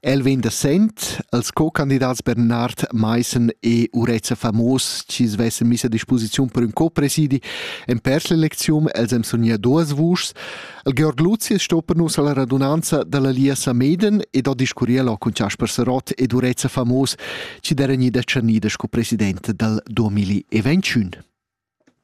El vegn da Sent, els co-candidats Bernard Maissen e Urezza Famos, chi svessen miss a disposiziun per ün co-presidi en pers l'eleczium, els hem sognia duas vuschs. El Georg Luzius sto per nus alla radunanza dalla Lia Sameden ed ho discurrier lo cun Jasper Serot ed Urezza Famos, chi deren ida tschernida sco president dal 2021.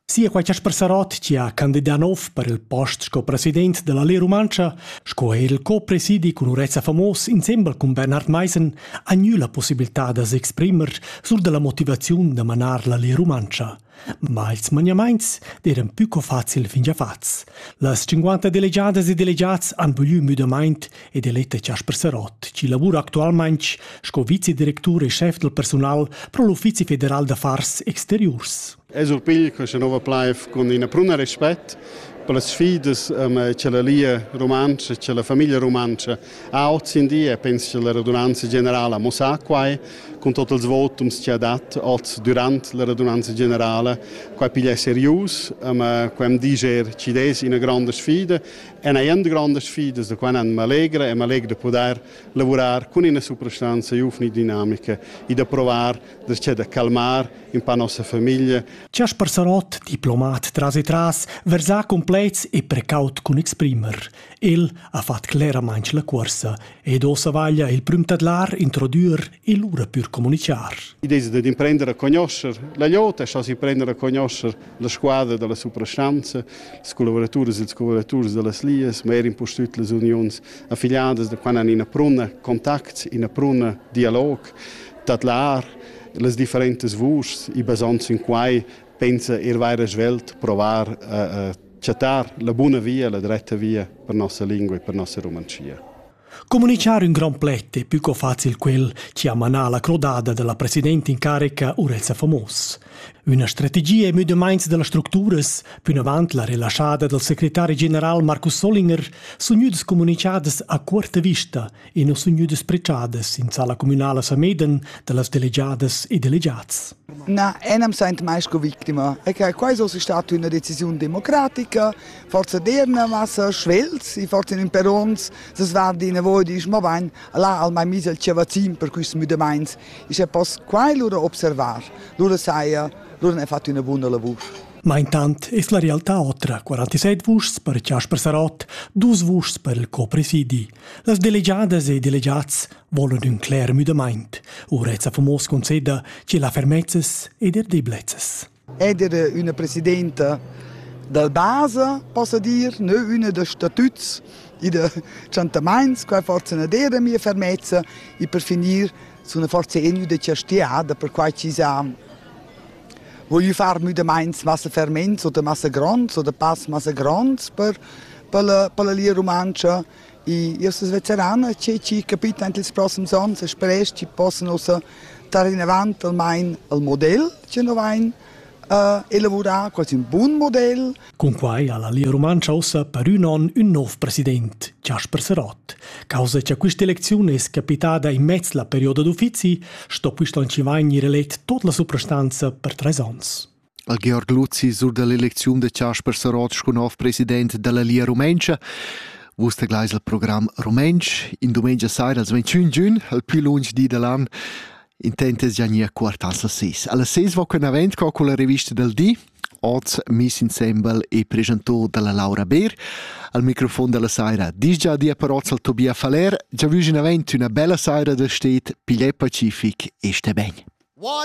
Sia quai Chasper Sarott chi ha candidà nouv per il post sco president da la Lia Rumantscha sco eir il co-presidi cun Urezza Famos insembel cun Bernhard Maissen ha gnü la pussibiltà da s'exprimer sul da la motivaziun da manar la Lia Rumantscha. Ma ils maniamaints d'eiran pü co facil fin già fats. Las 50 delegiadas e delegats han voglü müdamaint e deletta Chasper Serot, chi lavura actualmaing sco vicedirectur e chef del personal pro l'Uffizi federal d'affars exteriurs. Es un pigl che se nova plaiv con ina pruna respett per las sfidas che la lia romanza, che la famiglia romanza ha oggi in dia, penso che la radunanza generale mo sa quai, con tot els votums che ha dat oggi durant la radunanza generale, quai piglia serius, quai am diger ci des ina grande sfida È una grande sfida da quando mi allegra e mi allegra di poter lavorare con una soprastanza giovane e dinamica e di provare da calmare un po' la nostra famiglia. Jasper Sarott, diplomat tras e tras, versà complets e precaut cun exprimer. El ha fatg cleramain la cuorsa ed ossa vaglia il prüm tadlar introdür e lura pür comunicar. L'idea è di imprendere a conoscere la jota, e si prendere a conoscere La squadra dalla suprastonza, ils collavoraturas e ils collaboraturs dallas Lias, ma er impustüt las uniuns affiliadas da quando han ina pruna contact, ina pruna dialog, tadlar las differentas vuschs e basond sin quai pensa ir vaira svelt provar a, a chattar la buna via, la dretta via per nossa lingua e per nossa romancia. Communichar ün grand pled è più co facil quel chi ha manà la crodada dalla presidenta in carica Urezza Famos. Üna strategia è müdamaints da las structuras, pünavant la relaschada dal secretari general Markus Solinger, sun gnüdas comunichadas a cuorta vista e non sun gnüdas pregiadas in sala communala Sameden da las delegiadas e delegats. Na, enam saint mai sco victima. E che quai so sta üna decisiun democratica, forza dir na massa schwels i forza in perons se svardi in voi disch ma bain là al mai mis el chiavazin per quist müdamaints ich e poss quai lura observar lura saja lura ne fatto una buona lavur Ma intant es la realtà otra, 47 vuschs per Chasper Sarot, dus vuschs per il copresidi. Las delegiadas e delegats volan ün cler müdamaint, u Reza Famos conceda che la fermezzas ed er deblezzas. Eder üna presidenta dal basa, possa dir, nö üna da statuts e da tschantamaints, quai forza na d'eira mia fermezza e per finir suna forsa gnü da chastiada per quai chi s'ha voglü far müdamaints massa ferments oder massa gronds oder pass massa gronds per per la per la Lia Rumantscha Io sun veteran e chi chi capita in ils prossims ons e sperasch chi possan ussa tar inavant almain al model chi nu vain uh, elavurà, quasi un bun model. Cunquai ha la Lia Rumantscha ussa per ün on ün nov president, Jasper Serot. Causa cha quista elecziun es capitada in mez la perioda d'uffizi, sto quist on chi vain ir elet tot la suprastanza per tres ons. al Georg Luzi sur dall'elecziun da Chasper Sarot sco nov president dalla Lia Rumentscha. Vus te gleis al program Rumentsch in dumengia saira als 21 giun, al più lunsch di dall'an intentes gianir quartas a ses. Alla ses va quen avent co con la revista del di, oz Miss Ensemble e presentor dalla Laura Beer. Al microfon della saira disgia di paroz al Tobia Faller, già vus in avent una bella saira da stet, pigliè pacific e sté ben. What